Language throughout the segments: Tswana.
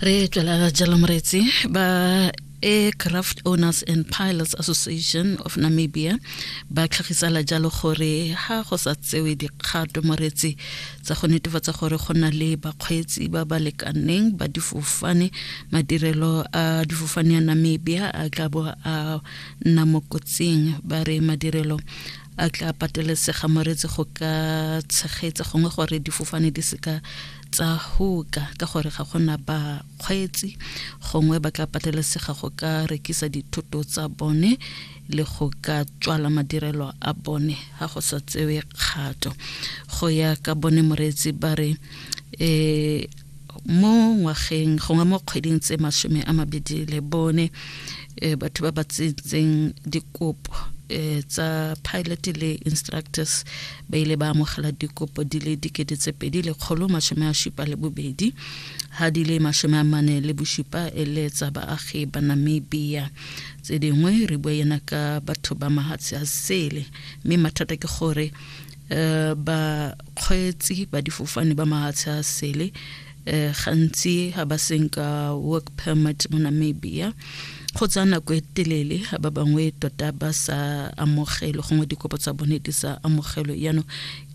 re tswela jalo moretsi ba aircraft owners and pilots association of namibia ba tlhagisela jalo gore ga go sa tsewe dikgato moretsi tsa go netefatsa gore go na le bakgweetsi ba ba lekaneng ba difofane madirelo a difofane ya namibia a tla bo a nna mo kotsing ba re madirelo a tla patelesega moretsi go ka tshegetsa gongwe gore difofane di seka tsa hoka ka gore ga gona bakgweetsi gongwe ba tla patelesega go ka rekisa dithoto tsa bone le go ka tswala madirelo a bone ga go sa tsewe kgato go ya ka bone moreetsi ba re um mo ngwageng gongwe mo kgweding tse masome a mabedi le bone um batho ba ba tsetseng dikopo um tsa pilot le instructors ba ile ba amogela dikopo di le dikete tse pedi lekgolo masome a šupa le bobedi ga di le masome a mane le bošupa e le tsa baagi ba namibia tse dingwe re bua yena ka batho ba mahatshe a sele mme mathata ke gore um bakgweetsi ba difofane ba mahatshe a sele eh, gantsi ga ba seng ka work permit mo namibia go tsaya nako e telele ga ba bangwe tota ba sa amogelwe gongwe dikopo tsa bone di sa amogelwe jaanong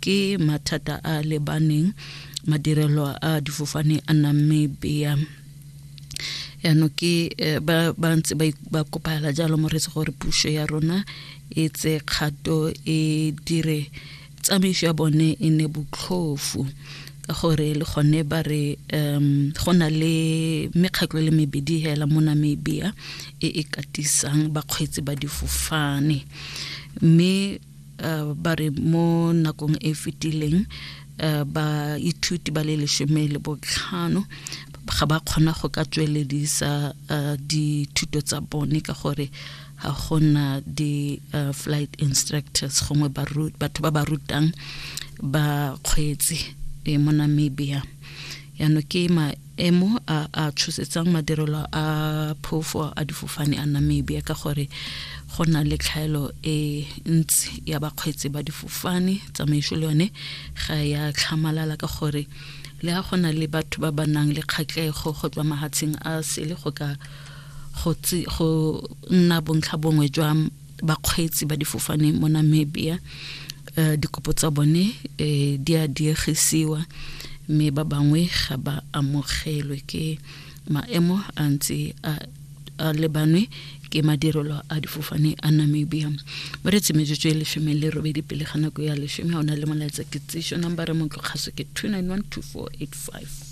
ke mathata a lebaneng madirelo a difofane a namibia yaanong ke eh, ba ba ntse ba ik- ba kopagela jalo moretse gore puso ya rona e tse kgato e dire tsamaiso ya bone e ne botlhofu ka gore le gone ba re um go na le mekgatlho le mebedi hela mo namibia e e katisang bakgweetsi ba difofane mme uh, ba re mo nakong e fetileng uh, baithuti ba le lesome le botlhano ga ba kgona go ka tsweledisa uh, dithuto tsa bone ka gore ga gona di-flight uh, instructors gongwe batho ba ba rutang ba kgweetsi e mo namibia yano ke maemo a a tshosetsang madirelo a phofo a difofane a namibia ka gore go na le tlhaelo e ntsi ya bakgweetsi ba difofane tsamaiso le yone ga ya tlhamalala ka gore le ga go na le batho ba ba nang le kgatlego go tswa mahatsheng a sele go ka go go nna bontlha bongwe jwa bakgweetsi ba difofane mo Namibia uh, dikopo tsa bone uh, di a diegisiwa mme ba bangwe ga ba amogelwe ke maemo a ntse a a lebanwe ke madirelo a difofane a namibia mo re tsemetsotso e lesome le robedi pele ga nako ya lesome ga o na le molaetsa ke tsešo number re motlokgaso ke 291 2485